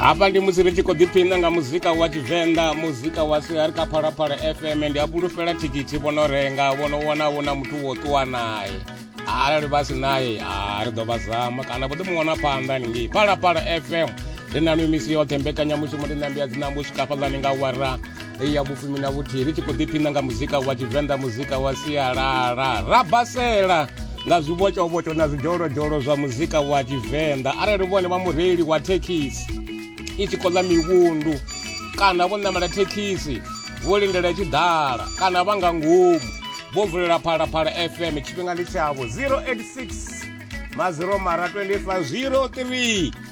hafha ndi musi ri tshi khou ḓiphina nga muzika wa tshivenḓa muzika wa siari kha phalaphala fm ndi a fhulufhela thikhithi vhono renga vhono wana vho na muthu wo ṱuwa naye arali vha si naye a ri ḓo vha zama kana vho ḓi mu wana phanḓa ningei phalaphala fm ri na mimisi yoṱhe mbekanyamushumo ri nambi ya dzinambo u swika fhaḽani nga wara hei ya vhufumi na vhuthihi ri tshi khou ḓiphina nga muzika wa tshivenḓa muzika wa sialala ra basela nga zwibotshobotsho na zwidzholozdzholo zwa muzika wa tshivenḓa arali vhone vha mureili wa thekhisi i tshi khou ḽa mivhundu kana vho ṋamela thekhisi vho lindela i tshi ḓala kana vha nga ngomu vho vulela phalaphala fm tshifhinga ndi tshavho 086 maziro mara 25 03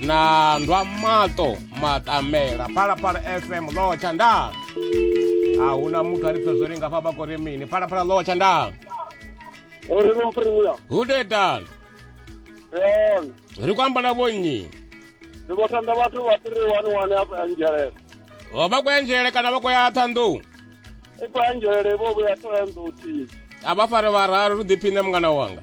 na ndwa maṱo maṱamela phalaphala fm lotsha nda a hu na muthu a ri pfe zwo ri ngafha vha kori mini phalaphala lotsha nda uri vho mphirimuya hu tetani yone ri ku ambala vhonnyi ndi vho thanda vhathu vha three one one afha ya nzhelele o vha kwa nzhelele kana vha kwa ya ṱhanḓou i khou ya nzhelele vho vhuya thoya nḓou thihi a vha fare vhararu ri ḓiphiṋe mungana wanga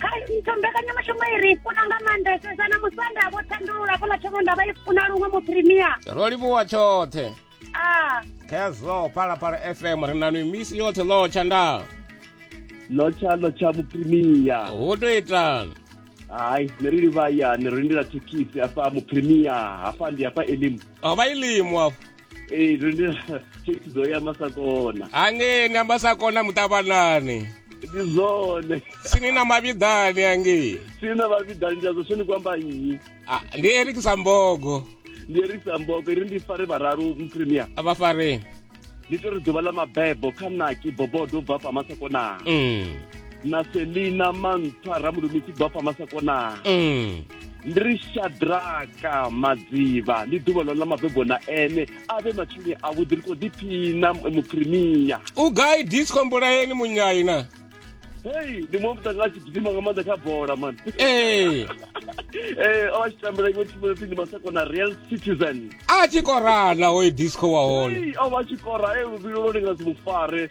kha ntho mbekanyamushumo i ri funa nga maanḓesesa na musanda vho thandulula fhala thoma nda vha i funa luṅwe muprimia ro livhuwa tshoṱhe ah. khezwo phalaphala fm ri na misi yoṱhe lotsha nda lotsha lotsha muprimia hu to itani hayi ne ri livhayani ri lindela thekhisi afha muprimia hafha ndi hafha elimu a vha ilimu afho ee ndi thikhidzo ya masakona hangei nga masakona muṱavhanani ndi zwone sini na mavhiḓani hangei sini na mavhiḓani ndi azwo sweni kwamba nnyi ah, ndi erikisa mbogo ndi erikisa mbogo ri ndi fare vhararu mpremier vhafareni ndi to ri ḓuvha ḽa mabebo kha naki bobodo u bva fha masakona mm. na selina mantswa ramulumisi u bva fha masakona mm. ndi ri shadraka madziva ndi ḓuvha ḽo ḽa mabebo na ene a vhe matshini avhuḓi ri khou ḓiphina muprimiya u gai disco mbulayeni munyaina hei ndi muṅwe mutanga a tshi gidima nga maanḓa kha bola mani ee ee o vha tshi tambela iṅwe thimu ipfi ndi masako na real citizen a tshi korana hoyo disco wa hone o vha tshi kora e luvhilo lwo linga si mufare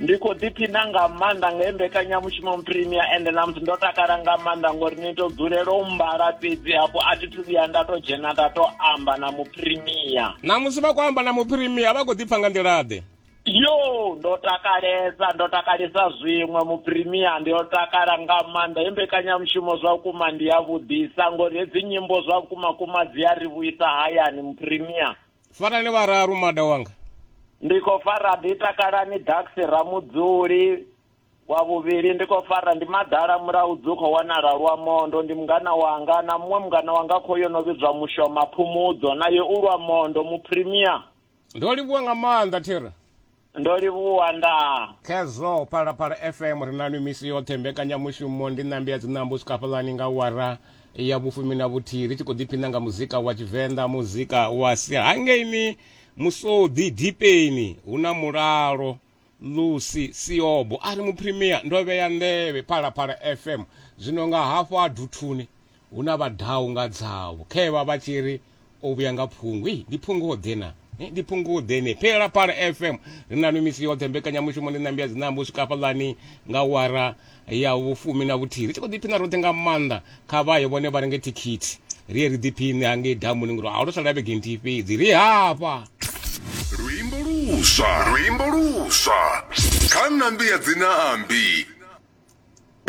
ndi khou ḓiphina nga maanḓa nga he mbekanyamushumo premier ende na musi ndo takala nga maanḓa ngori ni to dzulela u mbala fhedzi hafho a thi thu vhuya nda to dzhena nda to amba na muprimia na musi vha khou amba na muprimia vha khou ḓipfa nga nḓilaḓe yo ndo takalesa ndo takalesa zwiṅwe muprimia ndi yo takala nga maanḓa he mbekanyamushumo zwa vhukuma ndi ya vhudisa ngori hedzi nyimbo zwa vhukuma kuma dzi a ri vhuisa hayani muprimia farani vhararu mada wanga ndi khou fara ḓi takalani daxi ramudzuli wa vhuvhili ndi khou fara ndi maḓala mulaudzi dzi khou wanala lwa mondo ndi mungana wanga na muṅwe mungana wanga kho yo no vhidzwa mushoma phumudzo naye u lwa mondo mupremia ndo livhuwa nga maanḓa thera Ndo livhuwa ndaa. Khezwo Phalaphala FM ri na nwi misi yoṱhe. Mbekanyamushumo ndi Ṋambi ya Dziṋambo u swika hafhaḽani nga awara ya vhufumi na vhuthihi ri tshi khou ḓiphina nga muzika wa Tshivenḓa, muzika wa sia. Hangeini Musodi Dipeni hu na mulalo Lucy Siobo a ri Muphrimia ndo vhea nḓevhe Phalaphala FM zwino nga hafho ha Duthuni Hu na vha ḓaho nga dzavho khae vha vha tshi ri, O vhuya nga phungu. Hei, ndi phungu-ḓe na? Ndi phungu-ḓe ne? Phalaphala FM ri naṋwi misi yoṱhe, mbekanyamushumo ndi Ṋambi ya Dzinambo u swika hafhaḽani nga awara ya vhufumi na vhuthihi. Ri tshi khou ḓiphina roṱhe nga maanḓa. Kha vha ye vhone vha renge thikhithi, ri ye ri ḓiphiṋe hangei damuni ngori ho sala vhege nthihi fhedzi ri hafha. Luimbo luswa, luimbo luswa kha Ṋambi ya Dzinaambi.